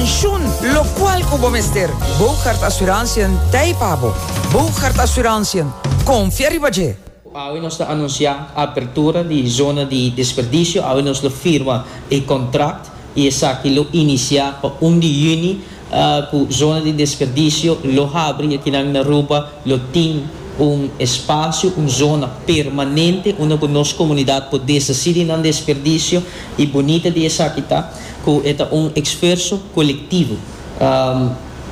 Shun locual cu bo mester. Bougaard Assurantiën t'ei pa bo. Bougaard Assurantiën, confia riba dje! Awe nos ta anuncia apertura di zona di desperdicio, awe nos lo firma e contract y esaki lo inicia pa un di juni cu zona di desperdicio lo habri, aki nan na Aruba lo tin un espacio, un zona permanente unda cu nos comunidad por desaci di nan desperdicio y bunita di esaki ta. cu e ta un exferso colectivo.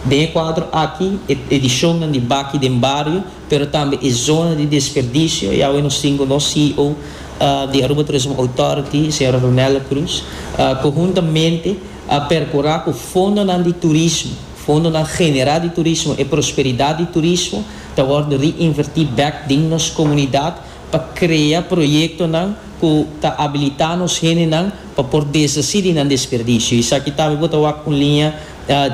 Den e cuadro aki, e edicionnan di Baki den Bario, pero tambe e zona di desperdicio, y awe nos tin cu nos CEO di Aruba Tourism Authority, señora Ronella Cruz, cu huntamente a percura cu fondonan di turismo, fondonan genera di turismo, e prosperidad di turismo ta worde reinverti bek den nos comunidad, pa krea proyektonan ku ta abilitá nos hendenan pa por desasí di nan desperdisio. Esaki ta bo ta wak un liña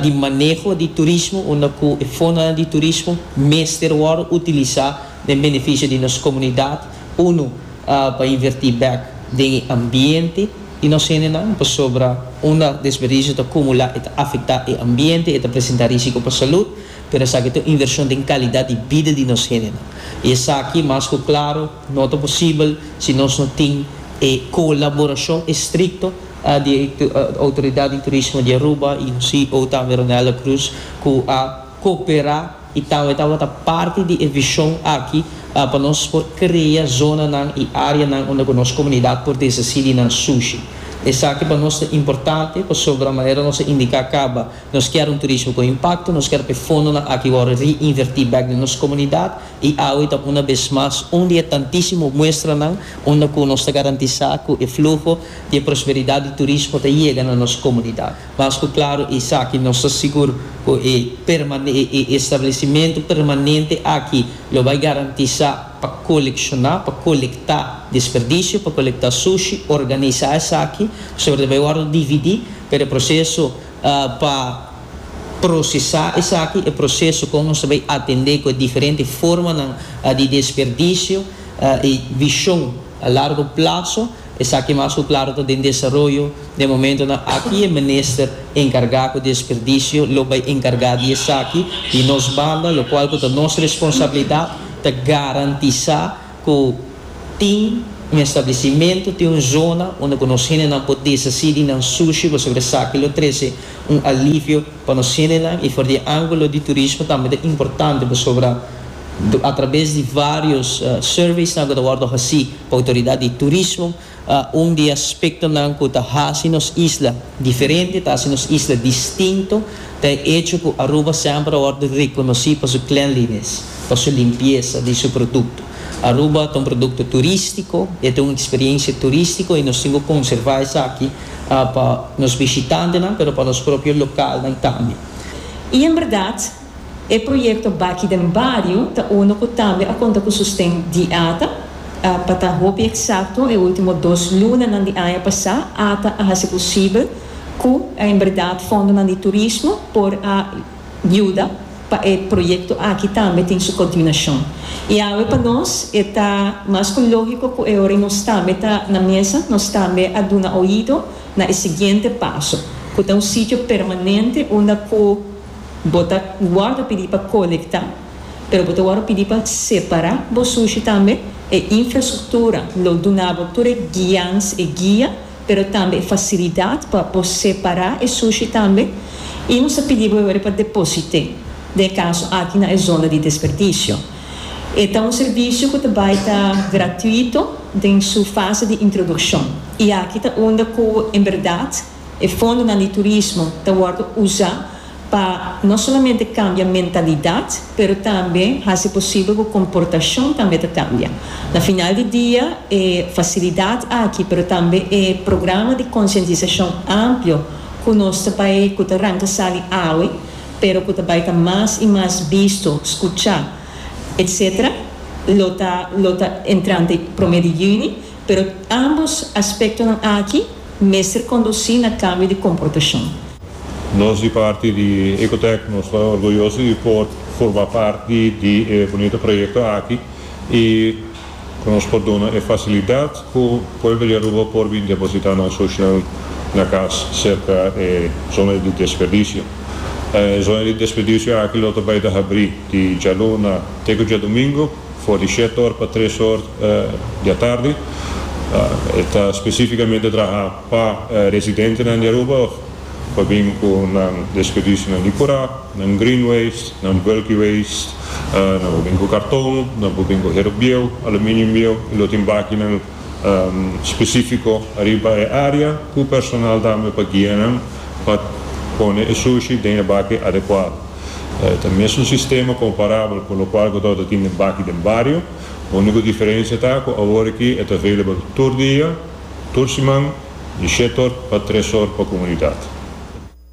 di maneho di turismo unda ku e fondonan di turismo mester wòrdu utilisá den benefisio di nos komunidat, unu pa invertí bèk den e ambiente di nos hendenan pasobra unda desperdisio ta kumulá e ta afektá e ambiente, e ta presentá rísiko pa salut. pero esaki ta un invershon den kalidat di bida di nos hendenan i esaki mas ku klaro no ta posibel si nos no tin e kolaborashon estrikto di e outoridat di turismo di Aruba i nos CEO tambe Ronelda Cruz ku a koperá i tambe tabata parti di e vishon aki pa nos por krea zonanan i áreanan unda ku nos komunidat por desasí di nan sushi. Esaki pa nos ta importante pasobra manera nos a indiká caba Nos kier un turismo con impacto, nos kier pa e fondonan aki wor re-inverti bek den nos comunidad y awe ta una bes mas un di e tantisimo muestranan unda cu nos ta garantisa cu e fluho di e prosperidad di turismo ta yega na nos comunidad. Mas cu claro esaki nos ta sigur cu e e establecimento permanente aki lo bay garantisa pa colecciona, pa colecta desperdicio, pa colecta sushi, organisa esaki, pasobra ta bay worde dividi, pero e proceso. Pa prosesá esaki, e proseso kon nos ta bai atendé ku e diferente formanan di desperdisio, e vishon a largo platso, esaki mas ku klaro ta den desaroyo den momentonan aki. E minister enkargá ku desperdisio lo bai enkargá di esaki. Di nos banda, lokual ku ta nos responsabilidat, ta garantisá. ku tin un establisimentu, tin un zona unda ku nos hendenan por deshasí di nan sushi pasobra esaki lo trese un alivio pa nos hendenan. I for di e ángulo di turismo tambe ta importante pasobra atrabes di vários surveysnan ku ta wòrdu hasí pa outoridat di turismo, Un di e aspektonan ku ta hasi nos isla diferente, ta hasi nos isla distinto, ta e echo ku Aruba semper a wòrdu rekonosí pa su cleanliness, pa su limpiesa di su produkto. Aruba ta un produkto turístiko, e ta un eksperiensia turístiko i nos tin ku konservá esaki pa nos bishitantenan, pero pa nos propio lokalnan tambe. I en bèrdat, E proyekto Baki den Bario ta uno ku tambe a konta ku sosten di ata. Pa ta hopi eksakto e último dos lunanan di aña pasá ata a hasi posibel ku en bèrdat fondonan di turismo por a yuda pa e proyekto aki tambe tin su kontiunashon. I awe pa nos e ta mas ku lógiko ku e ora nos tambe ta na mesa nos tambe a duna oido na e siguiente paso ku ta un sitio permanente unda ku Bo ta wòrdu pidi pa kolektá, pero bo ta wòrdu pidi pa separá bo sushi tambe. E infrastruktura lo duna bo tur e guians, e guia, pero tambe e fasilidat pa bo separá e sushi tambe. I nos ta pidi bo awor pa deposit'é den e kaso aki na e zona di desperdisio. E ta un servisio ku ta bai ta gratuito den su fase di introdukshon. I aki ta unda ku en bèrdat. E fondonan di turismo ta wòrdu usá pa no solamente kambia mentalidat, pero tambe hasi posibel ku komportashon tambe ta kambia. Na final di dia, e fasilidat aki, pero tambe e programa di konsientisashon amplio ku nos ta bai, ku ta ranka sali awe, pero ku ta bai ta mas i mas bisto, skuchá, etcétera, lo ta lo ta entrante promé di yüni. Pero ambos aspectonan aki mester conduci na cambio di comportacion. Nos di parti di Ecotec nos ta orgulloso di por forma parti di e bunito proyecto aki y cu nos por duna e facilidad cu pueblo di Aruba por bin deposita nan social na cas cerca e zona di desperdicio. E zona di desperdicio aki lo ta bay ta habri di djaluna te cu djadomingo. For di shettor pa treshor di atardi. E ta spesifikamente traha pa residentenan di Aruba òf pa bin ku nan desperdisio di kura, nan green waste, nan bulky waste. Nan por bin ku karton, nan por bin ku hero bieu, aluminium bieu i lo tin bakinan. spesífiko ariba e área ku personal tambe pa guia nan pa pone e sushi den e baki adekuado. E ta mesun sistema komparabel ku lokual ku torta tin den baki den bario. Úniko diferensia ta ku awor aki e ta available tur dia, tur siman, di shet or pa tres or pa komunidat.